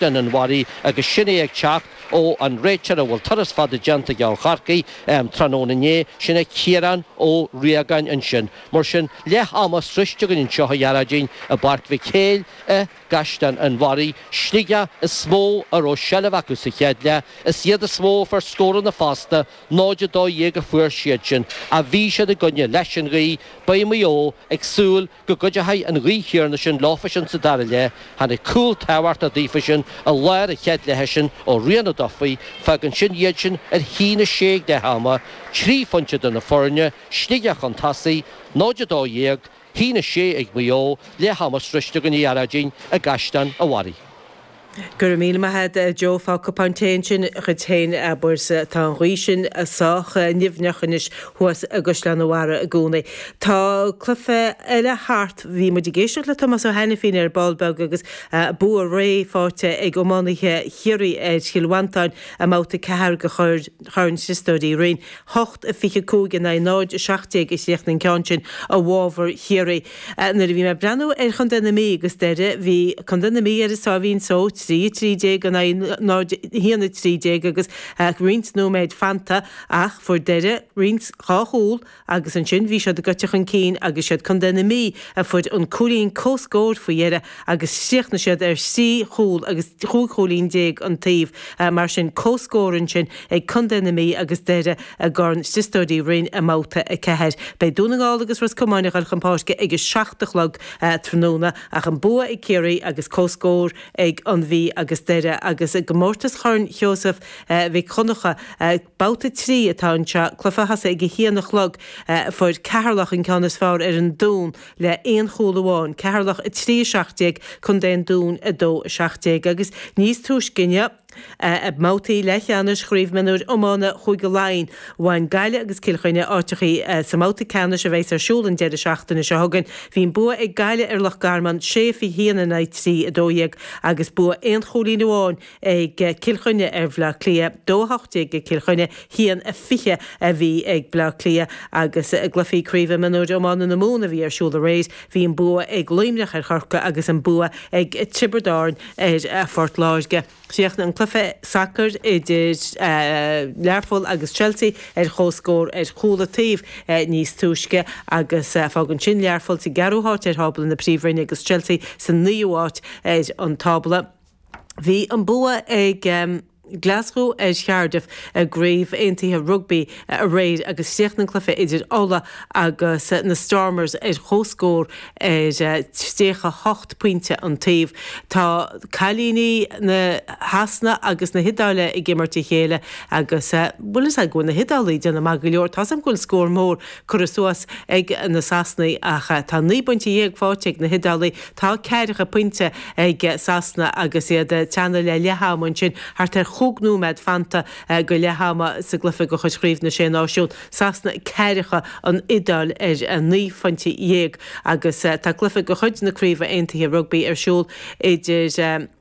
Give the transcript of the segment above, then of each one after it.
an Bharraigh agus sin é ag teacht ó an réiteoir a bhfuil turas fada déanta aige ó Chorcaigh tráthnóna inné, sin é Ciarán Ó Riagáin ansin. Mar sin, leath ama sroichte againn anseo, a Ghearóidín, i bPáirc Mhic Héil i gCaisleán an Bharraigh. Sligeach is mó a raibh seilbh acu sa chéad leath, is iad is mó a fuair scóranna fosta, 0-12 a fuair siadsean ach bhí siad i gcoinne leis an ghaoth, beidh Maigh Eo ag súil go gcuideoidh an ghaoth chéanna sin leofa sin sa dara leith, tháinig cúl tábhachtach daofa sin i lár an chéad leithe sin ó Rian Ó Dufaigh, fágann sin iad sin ar a haon a sé ag leath ama, trí phointe idir na foirne, Sligeach chun tosaigh, 0-12, a haon a sé ag Maigh Eo leath ama sroichte againn a Ghearóidín i gCaisleán an Bharraigh. Go raibh míle maith agat, a Joe. Faigh cupán tae ansin dhuit féin, abair. Sea, tá an ghaoth sin sách nimhneach anois thuas i gCaisleán a' Bharraigh i gcónaí. Tá cluiche eile thart. Bhí muid ag éisteacht le Tomás Ó hAinifín ar ball beag agus bua réidh faighte ag iománaithe Chiarraí ar Chill Mhantáin i mbabhta a ceathair de Chorn Chríostóir Uí Rinn. Hocht a fiche cúig in aghaidh 0 a seacht déag a chríochnaigh an ceann sin i bhfabhar Chiarraí. Nuair a bhí mé ag breathnú ar Chontae na Mí agus Doire, bhí Contae na Mí ar a sáimhín só, 3, 13 in aghaidh 0, 1, 13, agus roinnt nóiméid fanta ach fuair Doire roinnt dhá chúl agus ansin bhí siad goite chun cinn agus is iad Contae na Mí a fuair an cúilín comhscóir faoi dheireadh agus chríochnaigh siad ar thrí chúl agus chúig chúilín déag an taobh, mar sin, comhscór ansin ag Contae na Mí agus Doire i gCorn Chríostóir Uí Rinn i mBabhta 4. Beidh Dún na nGall agus Ros Comáin a dhul chun páirce ag a seacht a chlog tráthnóna ach an bua ag Ciarraí agus comhscór ag an Mhí agus Doire agus i gcomórtas Chorn Sheosaimh Mhic Dhonncha Babhta 3 atá anseo. Cluiche a thosaigh ag a haon a chlog, fuair Ceatharlach an ceann is fearr ar an Dún, le aon chúl amháin, Ceatharlach 3, 17, Contae an Dúin 2, 17, agus níos túisce inniu, i mbabhtaí leathcheannais Chraobh Mionúir Iomána Chúige Laighean, bhain Gaillimh agus Cill Chainnigh áiteachaí sa mbabhta ceannais a bheas ar siúl an deireadh seachtaine seo chugainn. Bhí an bua ag Gaillimh ar Loch Garman, 6-21 in aghaidh 3-12, agus bua aon chúilín amháin ag Cill Chainnigh ar Bhleá Cliath, 2-18 ag Cill Chainnigh, 1-20 a bhí ag Bleá Cliath agus i gcluichí Craoibhe Mionúir Iomána na Mumhan a bhí ar siúl aréir, bhí an bua ag Luimneach ar Chorcaigh agus an bua ag Tiobraid Árann ar Phort Láirge. Chríochnaigh an cluiche sacair idir Learpholl agus Chelsea ar comhscór ar chúl an taobh níos túisce agus fágann sin Learpholl sa gceathrú háit ar thábla na Príomhroinne agus Chelsea sa naoú háit ar an tábla. Bhí an bua ag Glaschú ar Chardiff i gCraobh Aontaithe Rugbaí aréir agus chríochnaigh an cluiche idir Uladh agus na Stormers ar chomhscór ar 38 pointe an taobh. Tá cailíní na Shasana agus na hIodáile ag imirt a chéile agus, bhuel, is ea go bhfuil na hIodálaigh ag déanamh maith go leor. Tá 's agam go bhfuil scór mór curtha suas ag na Sasanaigh ach tá naoi bpointe dhéag fáighte ag na hIodálaigh. Tá ceathracha pointe ag Sasana agus iad ag teannadh le leath ama ansin, thart ar chúig nóiméad fanta go leath ama sa gcluiche de chuid Chraobh na Sé Náisiún, Sasana ceathracha, an Iodáil ar naoi phointe dhéag agus tá cluiche de chuid na Craoibhe Aontaithe Rugbaí ar siúl idir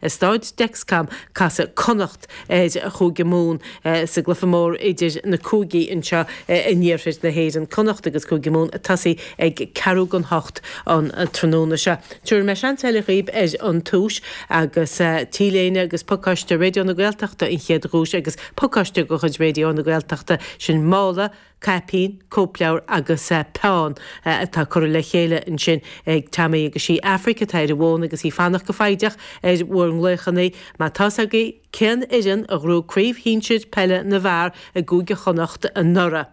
I Staid Dexcom, casfaidh Connacht ar Chúige Mumhan sa gcluiche mór idir na cúigí anseo in iarthar na hÉireann. Connacht agus Cúige Mumhan ag tosaí ag ceathrú don hocht an tráthnóna seo. Tabharfaidh mé seans eile dhaoibh ar an tomhas agus T-léine agus pacáiste Raidió na Gaeltachta an chéad dhuais agus pacáiste de chuid Raidió na Gaeltachta, sin mála caipín, cóipleabhar agus peann atá curtha le chéile ansin ag Tammy agus is í Aifric atá ar an bhfón agus í ag fanacht go foighdeach ar bhur nglaochannaí má tá's agaibh cén fhoireann a ghnóthaigh craobh shinsir peile na bhfear i gCúige Chonnacht anuraidh?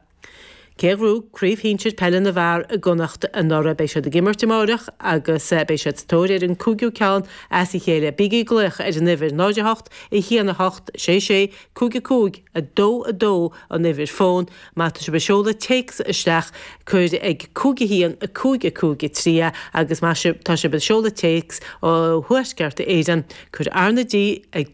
cé a ghnóthaigh craobh shinsir peile na bhfear i gConnacht anuraidh? Beidh siad ag imirt amáireach agus beidh siad sa tóir ar an cúigiú ceann as a chéile. Bígí ag glaoch ar an uimhir 08 1 8 6 6 Cúig a cúig a dó a dó an uimhir fón má tá sibh ag seoladh téacs isteach, cuir ag cúig a haon a cúig a cúig a trí é agus má tá sibh ag seoladh téacs ó Thuaisceart Éireann, cuir RnaG ag.